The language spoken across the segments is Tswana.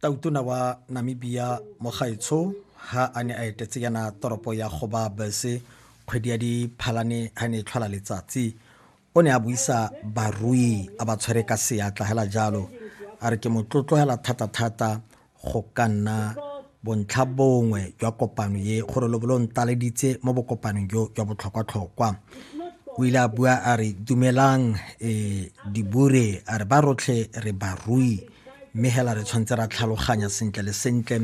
tautona wa namibia mogaetsho ha a ne a etetse yana toropo ya goba bese kgwedi ya diphalane ha ne e tlhola letsatsi o ne a buisa barui a ba tshwere ka seatla hela jalo a re ke motlotlogela thata-thata go ka nna bontlha bongwe jwa kopano ye gore lo bolo ntaleditse mo bokopanong jo jwa botlhokwa-tlhokwa o ile a bua a re dumelang um dibure a re ba rotlhe re barui mme hela re tshwanetse ra tlhaloganya sentle le sentle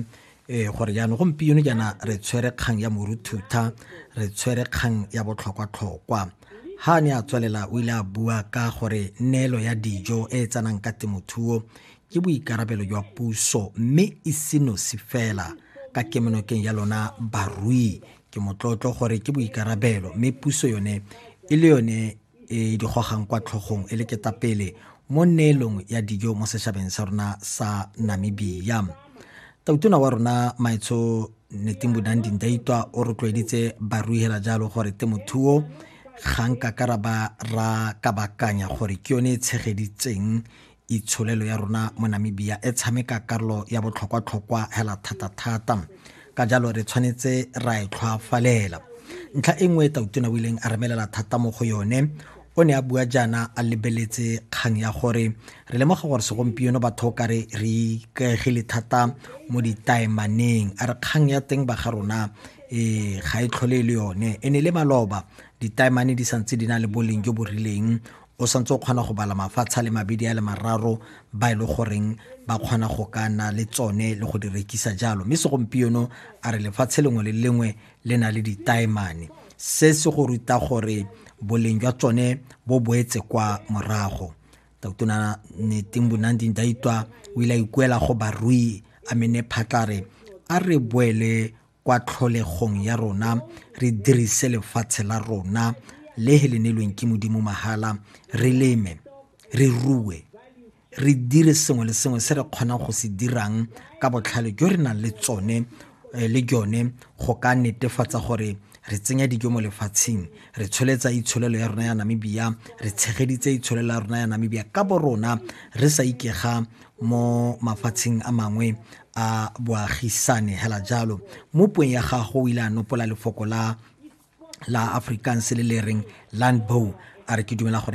um gore jaanong gompieno jaana re tshwere kgang ya moruthutha re tshwere kgang ya botlhokwatlhokwa ha ne a tswelela o ile a bua ka gore neelo ya dijo e e tsanang ka temothuo ke boikarabelo jwa puso mme e senosi fela ka kemonokeng ya lona barui ke motlotlo gore ke boikarabelo mme puso yone e le yone e di gogang kwa tlhogong e le ketapele mo neelong ya dijo mo setšhabeng sa rona sa namibia tautona wa rona maetsho netimbudang dindaitwa o rotloeditse baruihela jalo gore temothuo ga nka karaba ra kabakanya gore ke yone e tshegeditseng itsholelo ya rona mo namibia e tshameka karolo ya botlhokwa-tlhokwa hela thata-thata ka jalo re tshwanetse ra e tlhwafalela ntlha e nngwe e tautona o ileng a remelela thata mo go yone o ne a bua jaana a lebeletse kgang ya gore re lemoga gore segompieno batho ka re re ikaegile thata mo ditaemaneng a re kgang ya teng ba ga rona e ga e tlhole e le yone e ne le maloba ditaemane di santse di na le boleng jo bo rileng o santse o kgona go bala mafatshe a le mabedi a le mararo ba e le goreng ba kgona go ka na le tsone le go di rekisa jalo mme segompieno a re lefatshe lengwe le lengwe le na le ditaemane se se go ruta gore boleng jwa tsone bo boetse kwa morago tautona neting bonanding daitwa o ile a ikuela go barui a mene phatlare a re boele kwa tlholegong ya rona re dirise lefatshe la rona le he le neilweng ke modimo mahala re leme re rue re dire sengwe le sengwe se re kgonang go se dirang ka botlhale jo re nang le tsone eh, le jone go ka netefatsa gore re tsenya dijo mo lefatsheng re tsholetsa itsholelo ya rona ya namibia re tshegeditse itsholelo ya rona ya namibia ka bo rona re sa ikega mo mafatsheng a mangwe a boagisane hela jalo mo puong ya gago o ile a nopola lefoko la la afrikaans le le reng landbow a re ke dumela gore